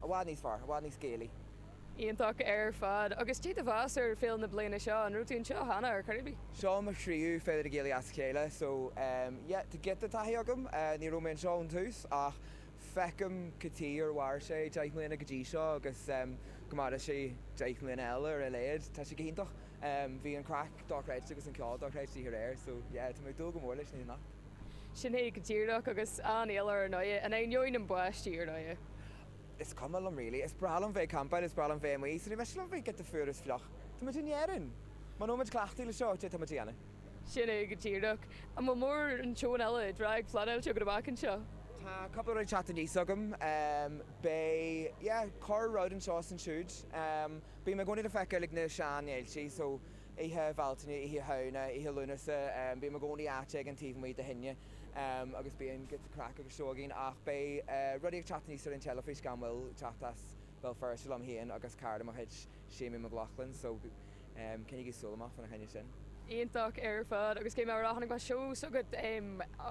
I bhfad níos fearr. I bhfad níos Gaelaí. Iontach ar fad. Agus caidé do mheas ar Féile na bliana seo? An raibh tú anseo cheana ar chor ar bith? Seo mo thríú Féile na Gealaí as a chéile so ehm yeah tá giota taithí agam. Ní raibh mé anseo ón tús ach feicim cad chuige ar mhair sé deich mbliana go dtí seo agus ehm go maire sé deich mbliana eile ar a laghad. Tá sé go hiontach. Bhí an craic dochreidte agus an ceol dochreidte aréir so yeah tá mé ag dúil go mór leis na himeacht. Sin é go díreach, agus an-eol ar an oidhe, and I know na bpáistí ar oidhe. Is cuma liom really. Is breá liom bheith ag campáil, is breá liom bheith amuigh, is mé sin liom bheith ag get the fuar is fliuch. Táimid in Éirinn! Muna mbímid cleachtaithe le seo, caidé atáimid a dhéanamh. Sin é go díreach. An bhfuil mórán seónna eile á bpleanáil agat go amach anseo? Tá cúpla rud ag teacht aníos agam. Beidh, yeah, corr rud anseo is ansiúd. Bím i gcónaí le feiceáil ag na seanfhéilte, so Oíche Bhealtaine, Oíche Shamhna, Oíche Lúnasa, bím i gcónaí áit éigin taobh amuigh le tine agus bíonn giota craic agus seó againn ach beidh rudaí ag teacht aníos ar an teilifís gan mhoill, taispeántas i mBéal Feirste liom féin agus cara de mo chuid, Séimí McLaughlin, so coinnígí súil amach fána choinne sin. Iontach ar fad agus chonaic mise an seó s'agat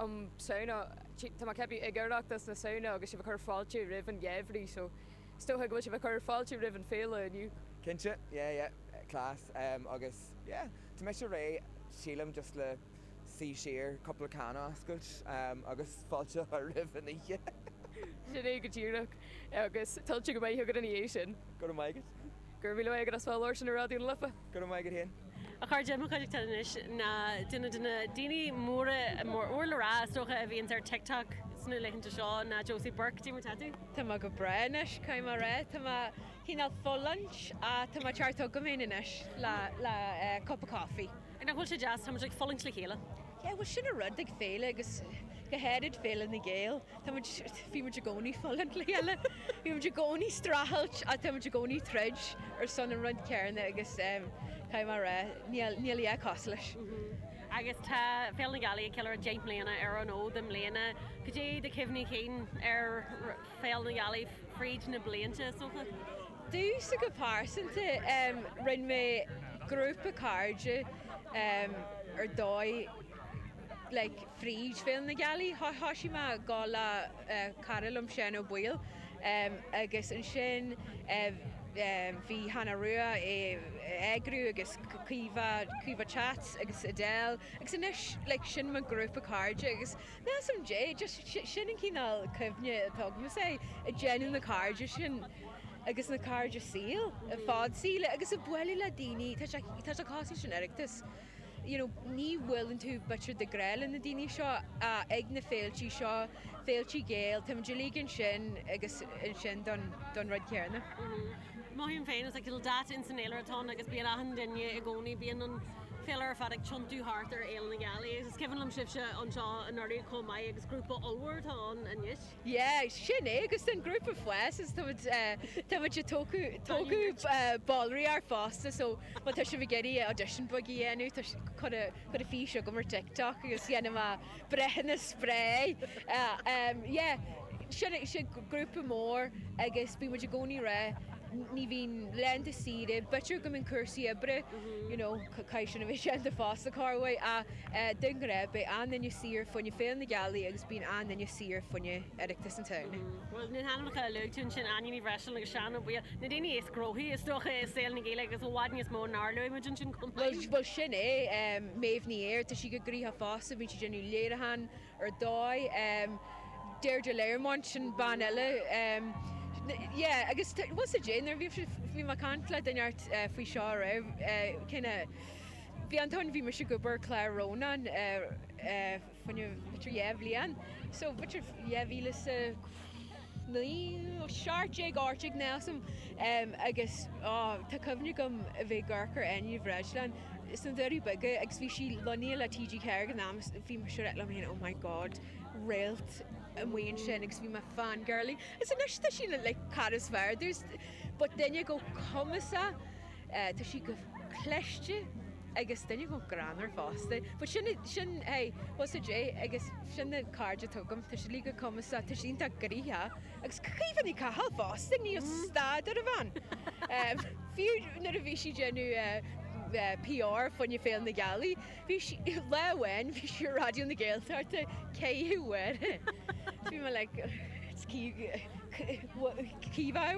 um Samhna, tá mé ag ceapadh ag Oireachtas na Samhna agus sibh ag cur fáilte roimh an gheimhreadh so. Is dócha go bhfuil sibh ag cur fáilte roimh an féile inniu? Cinnte, yeah, yeah, class, em, agus yeah, tá mise réidh, sílim, just le suí siar, cúpla can a oscailt, em, agus fáilte a chur roimh an oíche! Sin é go díreach, agus tuillte go maith agat ina dhiaidh sin! Go raibh maith agat. Go raibh míle maith agat as bheith ag labhairt ar Raidió na Life. Go raibh maith agat féin. A chairde, i mo chuideachta anois ná duine de na daoine móra, mór le rá is dócha, a bhíonns ar TikTok sna laethanta seo ná Josie Burke. Caidé mar atá tú. Tá mé go breá anois, caithfidh mé a rá. Tá mé cineál ag fulaingt ach tá an ceart agam féin anois le cupa coffee. Nach bhfuil sé deas? Táimid ag fulaingt le chéile. Yeah, bhuel sin an rud ag Féile agus go háirid Féile na Gealaí, táimid, bíonn muid i gcónaí fulaingt le chéile. Bímid i gcónaí streachailt ach táimid i gcónaí troid ar son an rud céanna agus caithfidh mé a rá, níl a dhath cosúil leis. Agus tá Féile na Gealaí ag ceiliúradh deich mbliana ar an fhód i mbliana. Cad é do chuimhní cinn ar Féile na Gealaí fríd na blianta, is dócha? Domhsa go pearsanta, rinne mé grúpa cairde ar dóigh like fríd Féile na Gealaí. Thoisigh mé ag dul le. cara liom Seán Ó Baoill agus ansin bhí Hannah Rua ag eagrú agus Caoimhe Caoimhe Cats agus Adele agus anois like sin mo grúpa cairde agus measaim gurb é just sin an cineál cuimhne atá agam is ea ag déanamh na cairde sin agus na cairde saoil fad saoil agus ag bualadh le daoine tá sé tá sé cosúil leis an Oireachtas you know ní bhuaileann tú b'fhéidir de ghnáth le na daoine seo ach ag na féiltí seo, féiltí Gael, tá muid uilig ansin agus ansin don, don rud céanna. Mothaím féin is like dáta in san fhéilire atá ann agus bíonn achan duine i gcónaí, bíonn an féilire ar fad ag tiontú thart ar Fhéile na Gealaí agus is cuimhin liom sibhse anseo anuraidh chomh maith agus grúpa ollmhór atá ann anois. Yeah, sin é, agus an grúpa ag fás, is tá muid, tá muid ag tógáil, tógáil ballraí úra fosta so má tá sibh ag iarraidh audition bheag a dhéanamh tá sé, cuir a, cuir a fís chugam ar TikTok agus déanfaidh mé breithiúnas spré. Yeah, sin é, sin grúpa mór agus bíonn muid i gcónaí réidh, ní bhíonn laethanta saoire, b'fhéidir go mbíonn cúrsaí oibre, you know, caithfidh sin a bheith déanta fosta, chomh maith ach. De ghnáth, beidh achan duine saor fá choinne Féile na Gealaí agus bíonn achan duine saor fá choinne Oireachtas na Samhna. Bhuel, na hainmneacha a luaigh tú ansin, Áine Ní Bhreisleáin agus Seán Ó Baoill, na daoine is gnóthaí, is dócha, i saol na Gaeilge agus i bhfad níos mó nár luaigh muid ansin chomh maith. Bhuel, sin é. Méabh Ní Éir, tá sí chomh gnoitheach fosta, bíonn sí ag déanamh léiriúchán ar dóigh. Deirdre Learmont, sin bean eile. Yeah, agus bhuel, sa deireadh, bhí mé ag caint le duine faoi seo aréir, kind of, Bhí Antóin, bhí mise ag obair ar chlár Rónán fá choinne b'fhéidir dhá bhliain so b'fhéidir dhá mhíle sa naoi nó seacht déag áit ag Nelson agus á tá cuimhne agam a bheith ag amharc ar Áine Ní Bhreisleáin sna Doirí Beaga agus bhí sí lonnaithe le TG4 ag an am so bhí mise ag ráit liom féin oh my God réalt amuigh ansin agus bhí mé fangirlie is anois tá sí le like cara is fearr there's but duine chomh cumasach Tá sí chomh cliste agus duine chomh greannmhar fosta. Bhuel, sin, sin, hey, what's a day? Agus sin na cairde atá agam, tá siad uilig chomh cumasach, tá siad iontach gnoitheach. Agus Caoimhe Ní Chathail fosta, níl stad ar an bhean. Fiú nuair a bhí sí ag déanamh PR fá choinne Féile na Gealaí, bhí sí, lá amháin, bhí sí ar Raidió na Gaeltachta, ceithre huaire. Bhí mé like, it's Caoimhe, Caoimhe hour?